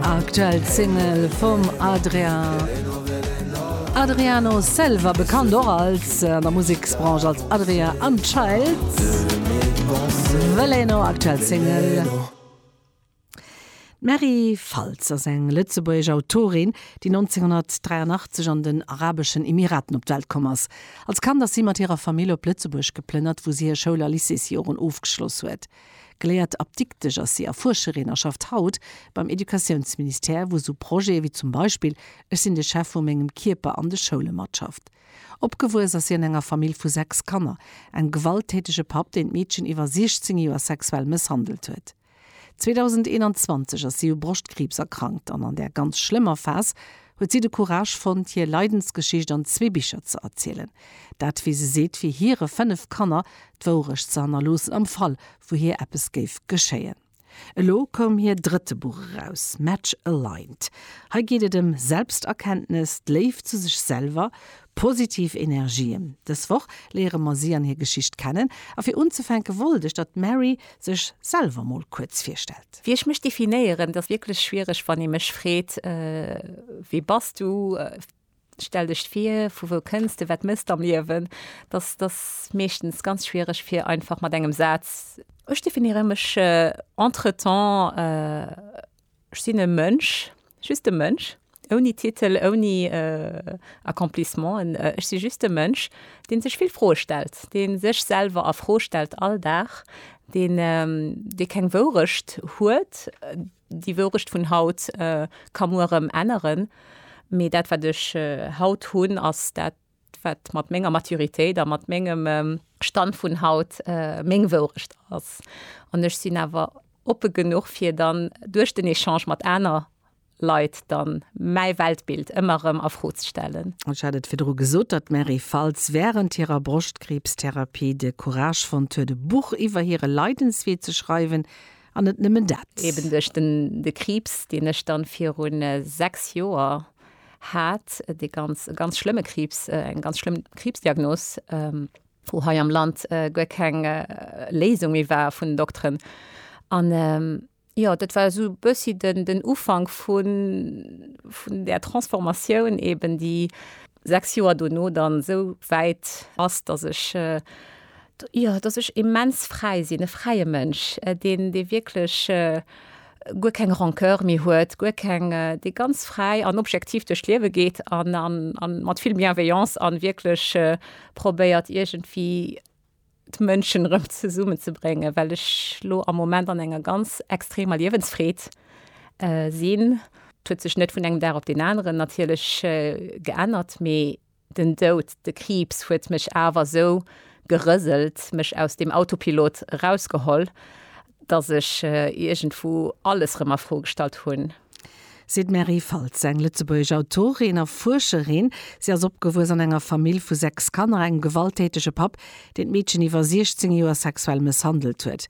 Aktuell Single vum Adriano Selva, bekannt och als der Museksbranche als Adria an Child. Veleno aktuell Single. D'Mary Faltz ass eng lëtzebuergesch Autorin, déi 1983 an den Arabeschen Emiraten op d'Welt komm ass. Als Kand ass si mat hirer Famill op Lëtzebuerg geplënnert, wou si hir Schoul a Lycéesjoren ofgeschloss huet. Geléiert Apdiktesch ass si a Fuerscherin a schafft haut beim Educatiounsministère, wou sou Projete wéi zum Beispill Ech sinn de Chef vu mengem Kierper an de Schoule matschafft. Opgewuess ass si an enger Famill vu sechs Kanner. Engem gewalttätege Papp, deen d'Meedchen iwwer 16 Joer sexuell mësshandelt huet. 2021 ass si u Broschtkriibs erkrankt an an där ganz schlëmmer Phas huet si de Courage fonnt, hir Leidensgeschicht an zwee Bicher ze erzielen. Dat, wéi se seet, fir hire fënnef Kanner d'Wourecht ze hannerloossen am Fall, wou hir eppes géif geschéien. Elo koum hir drëtte Buch eraus, Match Aligned. Hei geet et ëm Selbsterkenntnes, d'Léift zu sech selwer, Positiv Energien. Dës Woch léiere mer si an hir Geschicht kennen, a fir unzefänke wollt ech, datt d'Mary sech selwer mol kuerz virstellt. Wéi ech mech definéieren, dat ass wierklech schwiereg, wann ee mech freet, Wee bass du? Stell dech vir, vu wou kënns de? Wat méchs de am Liewen? Dat ass meeschtens ganz schwiereg, fir einfach mat engem Saz. Ech definéiere mech entretemps. Ech sinn e Mënsch, just e Mënsch, ouni Titel, ouni Accomplissementen. Ech si just e Mënsch, dee sech vill Froe stellt, dee sech selwer a Fro stellt all Dag, deen, dee keng Wourecht huet, déi Wourecht vun haut ka muer erëm änneren, mee dat wat ech haut hunn ass dat, wat mat menger Maturitéit a mat mengem Stand vun haut meng Wourecht ass. An ech sinn awer oppe genuch, fir dann duerch den Echange mat aner Leit dann mäi Weltbild ëmmer erëm a Fro ze stellen. Ech hat et virdru gesot, datt d'Mary Faltz wärend hirer Broschtkriibstherapie de Courage fonnt huet, e Buch iwwer hire Leidenswee ze schreiwen. An net nëmmen dat. Eben duerch de Kriibs, deen ech dann virun sechs Joer hat dee ganz, ganz schlëmme Kriibs, eng ganz schlëmm Kriibsdiagnos, wou hei am Land guer keng Léisung méi war vun den Dokteren. An jo, dat war esou e bëssi den, den Ufank vun, vun där Transformatioun eeben, déi sechs Joer dono dann esou wäit ass, datt ech, jo, datt ech immens fräi sinn, e fräie Mënsch, deen, dee wierklech, guer keng Rancœur méi huet, guer keng, dee ganz fräi an objektiv duerch d'Liewe geet an, an, a mat vill Bienveillance an wierklech probéiert iergendwéi d'Mënschen erëm zesummen ze bréngen, well ech elo am Moment an enger ganz extremer Liewensfreed sinn. D'huet sech net vun engem Dag op deen aneren natierlech geännert, mee Den Doud, de Kriibs huet mech awer esou gerëselt, mech aus dem Autopilot erausgeholl, dass ech iergendwou alles rëm a Fro gestallt hunn. Seet d'Mary Faltz, eng lëtzebuergesch Autorin a Fuerscherin. Si ass opgewuess an enger Famill vu sechs Kanner, engem gewalttätege Papp, deen d'Meedchen iwwer 16 Joer sexuell mësshandelt huet.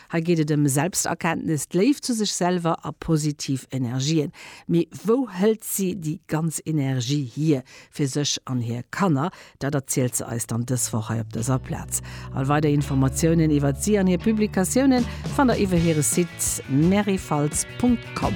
Hei geet et ëm Selbsterkenntnis, d'Léift zu sech selwer a positiv Energien. Mee wou hëlt si déi ganz Energie hier? Fir sech an hir Kanner? Dat erzielt se eis dann dës Woch hei op dëser Plaz. All weider Informatiounen iwwert si an hir Publikatiounen fannt der iwwer hire Site maryfaltz Punkt Com.